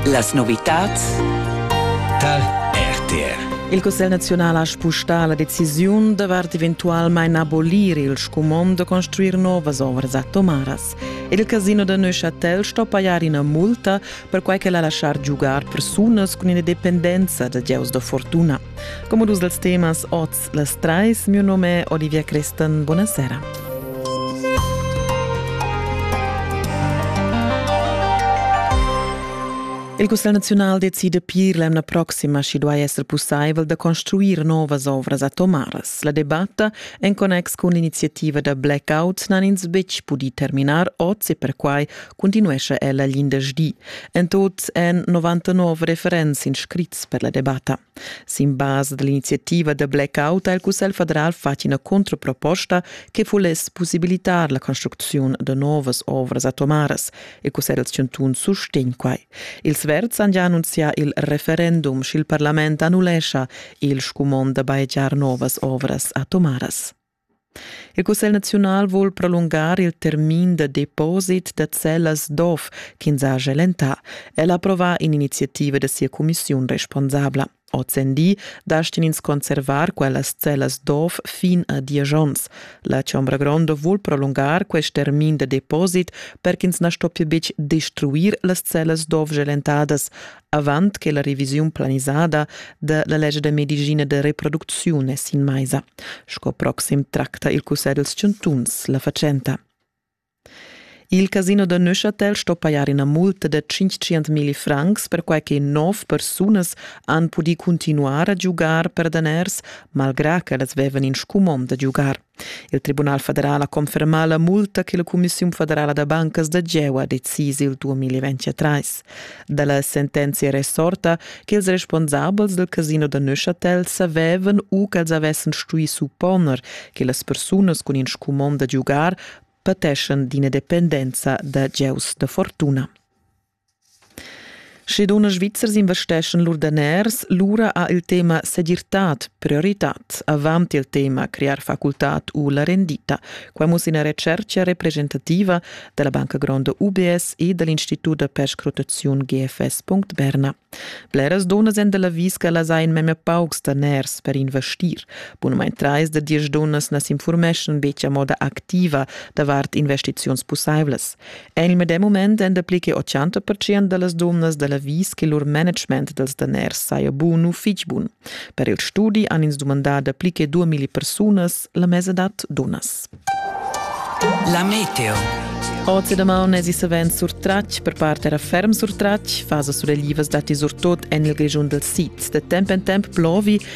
Las novitads tar RTR. Il Cussegl naziunal ha spustà la decisiun davart eventualmain abolir il scumond da construir novas ovras atomaras. Ed il casino da Neuchâtel sto pajar ina multa per quai ch'el ha lasciar giugar persunas cun ina dependenza da gieus da fortuna. Como dus dels temas oz les trais, mio nome è Olivia Christen, buonasera. Il Cussel Naziunal decide pir l'emna proxima schi duai esser pussaivel da construir novas ovras atomaras. La debatta en connex cun l'iniziativa da blackout n'han ins betg pudì terminar oz e perquai continuescha ella l'indesch En tot èn 99 referents inscrits per la debatta. Sin basa dell'iniziativa da blackout ha il Cussegl federal fatg ina controproposta che voless possibilitar la construcziun da novas ovras atomaras. Il Cussegl dals chantuns sustegn quai. Ils Verds han già annunziato il referendum sch'il parlament annullescha il scumond da bajegiar novas ovras atomaras. Il cussegl naziunal vul prolungar il termin da deposit da cellas d'ov ch'ins ha gia lentà. El ha approvà in'iniziativa da sia cumissiun responsabla. Ozendi dastin ins conservar quellas cellas d'ov fin a diesch onns. La Chombra Gronda vul prolungar quest termin da deposit per ch'ins na stoppia betg destruir las cellas d'ov gelentadas, avant che la revisiun planisada da la lescha da medischina da reproducziun è sin maisa. Sco proxim tracta il Cussegl dels chantuns la fatschenta. Il casino da Neuchâtel sto pajar ina multa da 500 mili francs perquai che nov persunas han pudì continuar a giugar per daners, malgrà ch'ellas vevan in scumond da giugar. Il Tribunal federal ha confermà la multa che la Cumissiun federala da bancas da Geua decisa il 2023. Da la sentenzia è resorta che ils responsabels del casino da Neuchâtel savevan u ch'els avessan stui supponer che las persunas cun in scumond da giugar pateschan d'ina dependenza da gieus da fortuna. Sche dunnas svizzers investeschan lur daners, lura ha il tema segirtad prioritad. Avant il tema crear facultad u la rendita. Quai muss ina retschertga representativa da la Banca Gronda UBS e dal Institut da perscrutaziun GFS.Berna. Bleras dunnas èn da l'avis che las hain memia paucs daners per investir. Bunamain trais da diesch dunnas na s'infurmeschan betg a moda activa davart investiziuns pussaivlas. En il medem mument èn dapli che 80 pertschient da las dunnas da l'avis che lur management dals daners saja bun u fitg bun. Per il studi han ins dumandà dapli che 2000 persunas la mesadad dunnas. La meteo. Oz e damaun èsi savens surtratg, per part era ferm surtratg. Fasa sureglivas datti surtut en il Grischun dal sid. Da temp en temp plovi